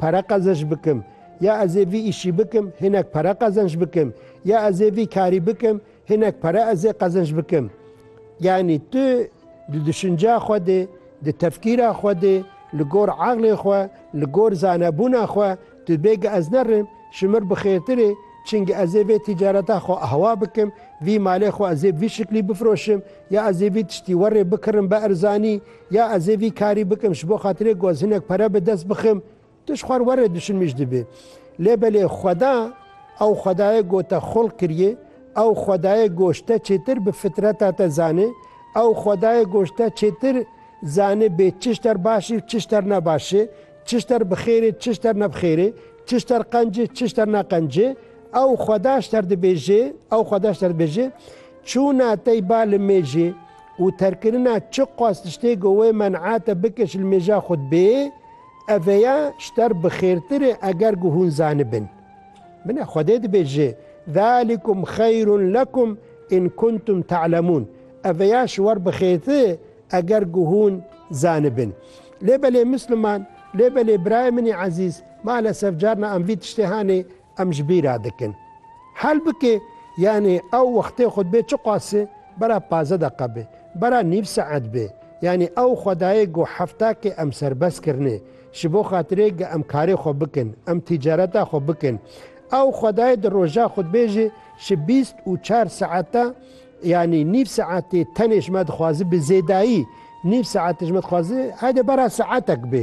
Pere qezinc bikim. Ya ez ê vî îşî bikim, hinek pere qezinc bikim. Ya ez ê vî karî bikim, hinek pere ez ê qezinc bikim. Yanî tu di duşinca xwe de, di tefkîra xwe de, li gor eqlê xwe, li gor zanebûna xwe tu bêgi ez nerim, ji mir bi xêrtir ê, çingî ez ê vê tîcareta xwe ahwa bikim, vî malê xwe ez ê bi vî şiklî bifroşim, ya ez ê vî tiştî werê bikirim bi erzanî, Ya ez ê vî karî bikim ji bo xatirê ku ez hinek pere bi dest bixim, tu ji xwe re were dişin min jî dibe. Lê belê xweda, ew xwedayê ku te xulq kiriye, ew xwedayê ku ji te çêtir bi fitreta te zanê, ew xwedayê ku ji te çêtir zanê bê çi ji ter baş ê û çi ji ter ne baş ê, çi ji ter bi xêr ê çi ji ter ne bi xêr ê, çi ji ter qenc ê çi ji ter ne qenc ê, ew xweda ji ter dibêje, ew xweda ji ter dibêje, Çûna tey ba li mêjê, û terkirina çi qas tiştê ku wê men'a te bike ji li mêja xwe di bê, ev vêya ji te re bi xêrtir e eger ku hûn zanibin. Min e Xwedê dibêje, Zalikum xeyrun lekum in kuntum ta'lemun, ev vêya ji wer bi xêrtir e eger ku hûn zanibin. Lê belê Misliman, lê belê birayê min ê ezîz, malesef carna em vî tiştê hanê, Em ji bî re dikin. Hel bike, yanî ew wextê xwe dibê çiqas e, bera pazdeh deqe be, bera nîv saet be, yanî ew xwedayê got hefta ke em serbest kirine, ji bo xatirê ge em karê xwe bikin, em tîcareta xwe bikin. Ew xwedayê di roja xwe dibêje ji bîst û çar saete, yanî nîv saetê tenê ji me dixwaze bi zêdayî, nîv saete ji me dixwaze, hede bera saetek be,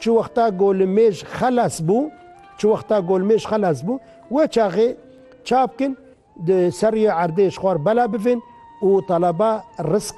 Çi wexta golimêj xelas bû, çi wexta golimêj xelas bû, we çaxê çap kin, di ser rûyê erdê ji xwe re bela bivin û talaba rizq.